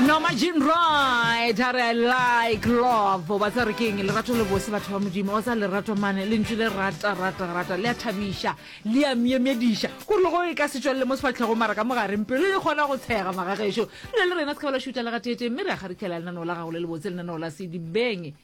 no majin right a re like love ba tsa re ke eng lerato le bose batho ba modimo wa tsa lerato mane le ntse le rata rata rata le a thabiša le a myemyediša ko re go e ka setswale le mo sefatlhego mara ka mogareng pelo e kgona go tshega magagešo le le rena se ka ba la šuta le gateeteng mme re a kgarikela lenaneo la gago le le botse lenaneo la sedibeng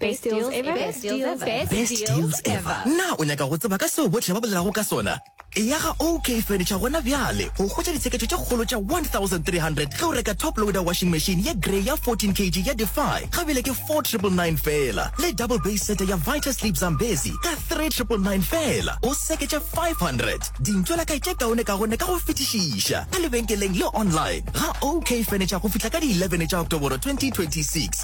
Best deals ever. Best deals ever. Best, Best deals, deals ever. ever. Na o nyaka go tseba ka seo bohle ba bolelago ka sona? Eya ga OK Furniture gona bjale go hwetša ditsheketšo tše kgolo tša 1300 ge o reka top loader washing machine ye grey ya 14 kg ya Defy ga bile ke 4999 feela le double base sete ya Vita Sleep Zambezi ka 3999 feela o seketša 500. Dintšo la kae tše kaone kaone ka go fetišiša ka lebenkeleng le online ga OK Furniture go fihla ka di 11 tša Oktoboro 2026.